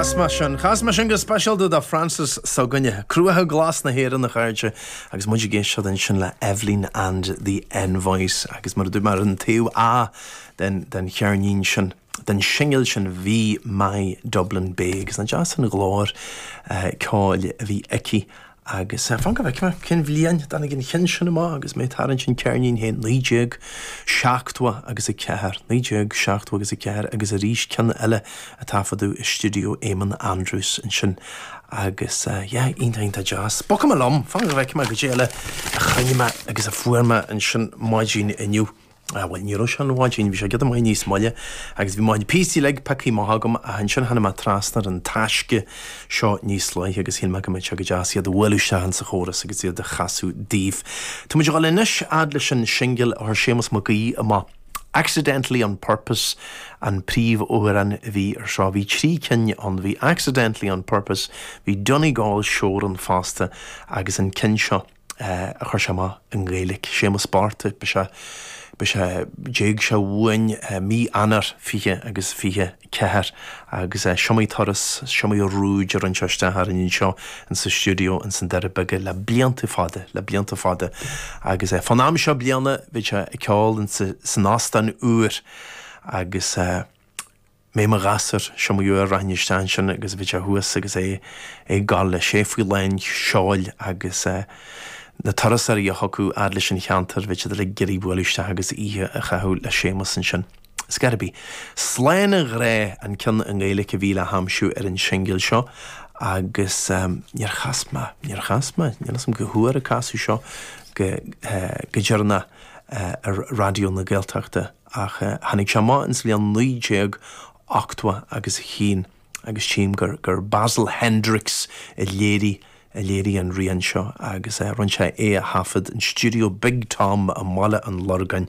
Chas mé sin. Chas mé sin go speisialta do Frances s'againne, Cruacha Glasa na hÉireann, a chairde, agus muid ag éisteacht ansin le Evelyn and the Envoys, agus mar a dúirt mé, ar an taobh A den, den cheirnín sin, den singil sin, bhí My Dublin Bay, agus nach deas an ghlór ceoil a bhí aici, Agus fan go bhfeicfidh mé, cén bhliain a dtáinig an cheann sin amach agus mé ag tarraingt an cheirnín féin, naoi déag seachtó agus a ceathair, naoi déag seachtó agus a ceathair agus arís ceann eile a taifeadadh i stiúideo Eamonn Andrews ansin agus yeah, iontach, iontach deas. Bogfaidh mé liom, fan go bhfeicfidh mé goidé eile a chruinnigh mé agus a fuair mé ansin maidin inniu. Ah, bhuel, ní raibh sé an mhaidin, bhí sé giota maith níos moille, agus bhí mo chuid píosaí uilig pioctha amach agam, ach ansin tháinig mé trasna ar an taisce seo níos luaithe agus shíl mé go mbeadh sé go deas iad a bhualadh isteach ins an chóras agus iad a chasadh daoibh. Tá muid a dhul anois fhad leis an singil a chuir Séamus Mac Aoidh amach, Accidentally On Purpose an príomhamhrán a bhí ar seo. Bhí trí cinn ann, bhí Accidentally On Purpose, bhí Donegal Shore ann fosta, agus an ceann seo. a chuir sé amach i nGaeilge, Séamus bocht, ba ea, ba ea, d'éag sé uainn mí Eanáir, fiche agus fiche ceathair, agus is iomaí turas, is iomaí rúid a rinne sé isteach orainn anseo insa stiúideo ins na Doirí Beaga le blianta fada, le blianta fada, agus fán am seo bliana bhíodh sé ag ceol insa, san óstán úr agus. mé i mo ghasúr, is iomaí uair a rachainn isteach ansin agus bhíodh sé thuas agus é ag gabháil leis faoi lán seoil agus na turasóirí a thiocfadh fhad leis an cheantar bhíodh siad ag iarraidh bualadh isteach agus oíche a chaitheamh le Séamus ansin. Is gurb é Slán a Ghrá an ceann i nGaeilic a bhí le haimsiú ar an singil seo agus níor chas mé, níor chas mé, níl 'fhios a'm cá huair a casadh seo go deireannach ar Raidió na Gaeltachta. ach tháinig sé amach insa bhliain 1980 agus a chinn, agus tchím gur, gur Basil Hendricks a léirigh, a léirigh an rian seo agus rinne sé é a thaifead in stiúideo Big Tom i mBaile an Lorgáin.